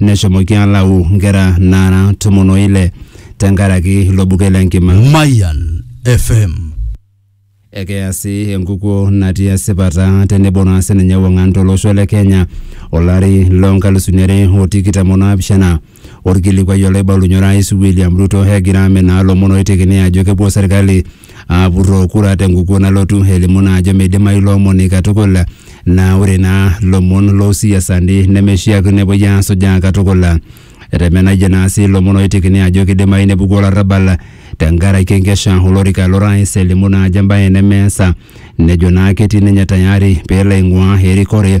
neshomoki alau nkera naara tomon o ile tenkaraki ilo buket le nkima. Mayan FM. Ekeya sii enkukuo natii esipata tenebo naa sininye ewang'an tolosho le Kenya olari loo nkalusuni are o tikitam o naapishana. Olkilikuai olaibalunye orais William Ruto egira aminaa lomon oitekini ajo kepuo serkali aapurroo kura tenkukuo nalotu elimu naa ajo meidimayu ilo omoni katukul naa ore naa lomon loosiasani nemeishiakino epuoi aasujaa katukul. Etemenayie naa sii lomon ooitekini ajo keidimayu nepuku olarrabal tenkaraki enkesha olorika lo rais elimu naa ajo embae nemeasa nejo naa ketii ninye tayari peelo aing'uaa erikore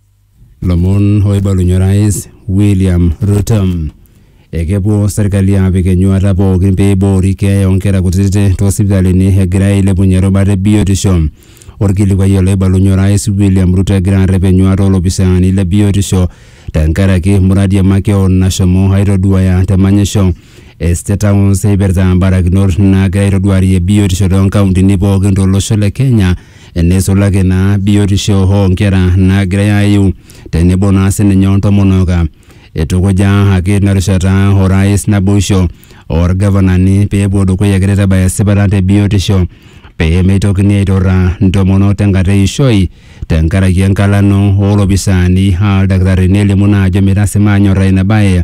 Lomon oibalunye orais William Ruto. Ekepuo serkali apik enyuata pookin pee eiboori keeya oonkera kutitik toosipitalini egira ailepunye irubat e biotisho. Orkilikuai oloibalunye orais William Ruto egira arrep enyuata oolopisaani le biotisho tenkaraki muradi e makeon nashomo aitoduaya te manyisho e State House eipirta mbarakinot naagira aitoduarie biotisho toonkauntini pookin tolosho le Kenya neisulaki naa biotisho oo nkera naagirai aayu tenebo naa sininye o ntomonok. Eitukuja ake tina rishata orais naboisho oo lgavanani pee epuo dukuya egira aitabaya esipata te biotisho pee meitokini aiturraa ntomonok tenkata e ishoi tenkaraki enkalano oo lopisaani aa ildakitarini elimu naa ajo meitasimaa aanyorraa ina bae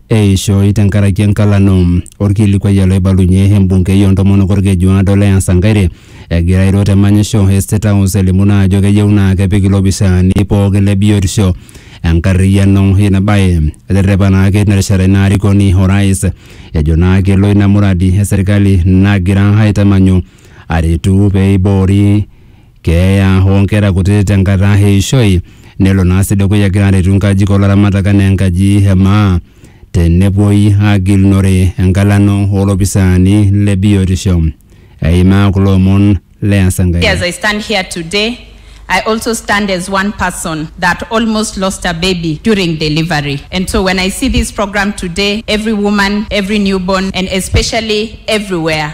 Eishoi tenkaraki enkalano. Olkilikuai ele oibalunye embungei oontomonok Olkeju Aado Leah Sankaire egira airo te manyisho e State House elimu naa ajo keyieu naa kepik ilopisaani pooki le biotisho enkarriyiano ina bae. Eterrepa naake tina rishata ina arikoni o rais ejo naa kelo ina muradi e serkali nagira aitamanyu aretu pee eiboori keeya oo nkera kuti te nkata e ishoi, nelo naa sii dukuya egira aretu nkajijik oo laramatak enaa enkaji e maa tenepuoi aagilunore engalano oo lopisaani le biotisho. Eimaa kulo omon le Asankaire. As I stand here today, I also stand as one person that almost lost a baby during delivery. And so when I see this program today, every woman, every newborn, and especially everywhere,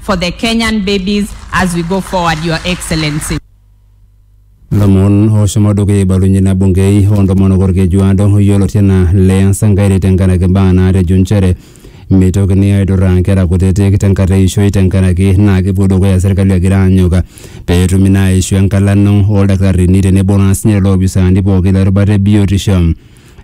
for the Kenyan babies as we go forward, Your Excellency. lomon oshomo dukuya ibalunye na bungei ontomonok orkejuado yioloti anaa Leah Sankaire tenkaraki mbaa naatejo nchere meitokini aidurraa nkera kutitik tenkata eishoi tenkaraki naa kepuo dukuya serkali egira aanyok pee etumi naa aishu enkalano oldakitarini tenebo naa sinye lelo opisaani pooki le rubata e biotisho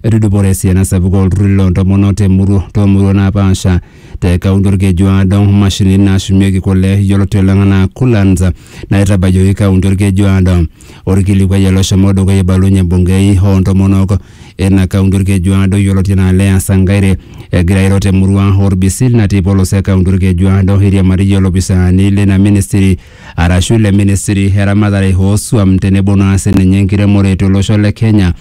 etudupore esiana sapuk olturruri loo ntomonok temurua toomurua naapaasha te kaunti olkeju aado mashinini naashumieki kule yioloti oleng anaa coolants naitabayioki kaunti olkeju aado orkilikuai ele oshomo dukuya eibalunye embungei oo ntomonok ina kaunti olkeju aado yioloti anaa Leah Sankaire egira airo temurua orbisil natii polos e kaunti olkeju aado eiriamariyie olopisaani leina ministry arashu ile ministry eramatare oosuam tenebo naa sininye enkiremore tolosho le Kenya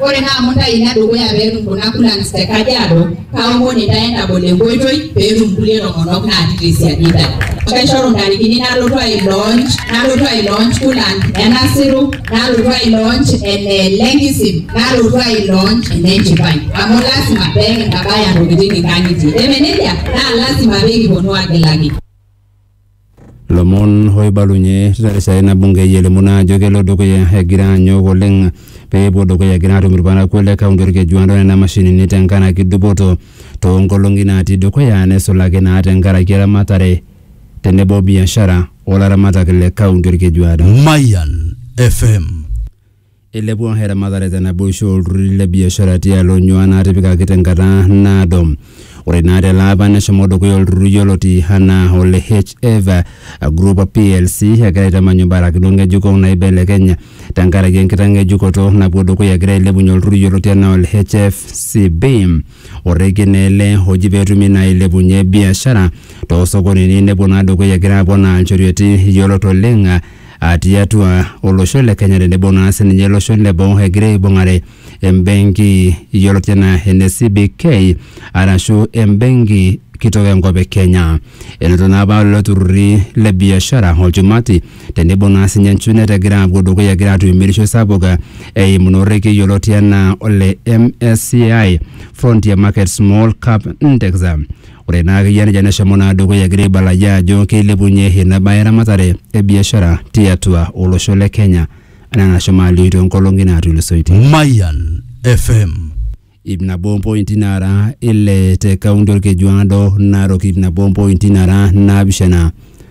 Ore naa amu intae ina dukuya pee etum kuna kulans te Kajiado, kaomon intae entabol enkoitoi pee etum kulie tomonok naati te siadi intae. Kaishoru intarikini nalotu ai launch, nalotu ai launch kulan e Nasiru, nalotu ai launch ene Lenkisim, nalotu ai launch ene Nchipai. Amu lasima pee kintabaya intokitin inkang'itie. Eme neijia? Naa lasima pee kiponu aagilaki. lomon oibalunye tina rishata ina bungei elimu naa ajo kelo dukuya egira anyok oleng pee epuo dukuya egira atum irparakuo le kaunti orkejuado nena mashinini tenkaraki dupoto toonkolong'i naatii dukuya nesulaki naa tenkaraki eramatare tenebo biashara olaramatak le kaunti orkejuado. Mayan FM. Eilepua eramatare te naboisho oo lturruri le biashara tialo onyua naatipikaki te nkata naado. Ore naa te laapa neshomo dukuya olturrur yioloti anaa ole HF Group plc egira aitamanyu mbarakinot ng'ejuko naaibelekeny te nkaraki enkitang'ejukoto napuo dukuya egira ailepunye olturrur yioloti anaa ole HFCB. Orrekie naa ele oji pee etumi naa ailepunye biashara too sokonini nepuo naa dukuya egira aponaa nchorioitin yiolot oleng ah, tiatua olosho le Kenya tenebo naa sininye iloshon le boo egira aibung'are embenki yioloti enaa ene CBK arashu embenki kitok enkop e Kenya. Enoto naa apa lelo turrurri le biashara olchumati tenebo naa sininye Njunet egira apuo dukuya egira atum emirisho sapuk eh, eimu ina orrekie yioloti enaa ole MSCI Frontier Market Small Cap Index. Ore naa akeyie nejia neshomo naa dukuya egira aibalajaa ajo keilepunye ina bae eramatare e biashara tiatua olosho le Kenya anaa enashomo alioi toonkolong'i naatulusoitie. Mayan FM. Ip nabo ompointi naara ile te kaunti Olkejuado, Narok ip nabo ompointi naara naapishana,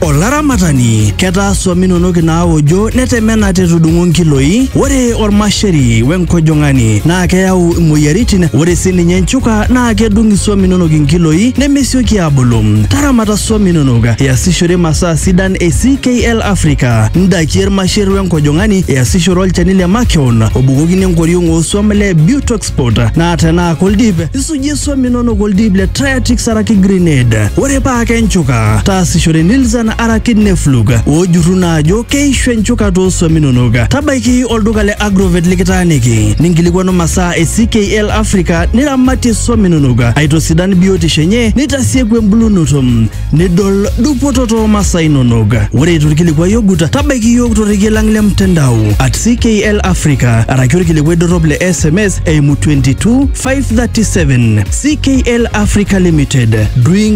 Olaramatani, ketaa swam inonok inaaojo netemena te tudung'o nkiloi. Ore olmasheri we nkojong'ani naa keyau imoyiaritin. Ore sii ninye nchuka naa kedung iswam inonok inkiloi nemesioki aabulu. Taramata swam inonok iasishore masaa sidan e CKL Africa. Ndakie ilmasher we nkojong'ani iasishore olchani le makeon obukokini enkoriong oo swam le Butox passport naa tenaa koldip isujie swam inonok oldip le Triatix araki Grenade ore paa kenchuka taasishore Nilzan araki Neflug oojurru naa ajo keishu enchuka too swam inonok tabaiki olduka le Agrovet likitaaniki ninkilikuanu masaa e CKL Africa niramatie swam inonok aitosidan biotisho enye nitasieku embulunoto nidol dupoto too masaa inonok. Ore eitu ilkilikuai ogut, tabaiki iyiook torrekie lang le mtandao at CKL Africa araki olkilikuai dorrop le SMS eimu 22537 CKL Africa Limited doing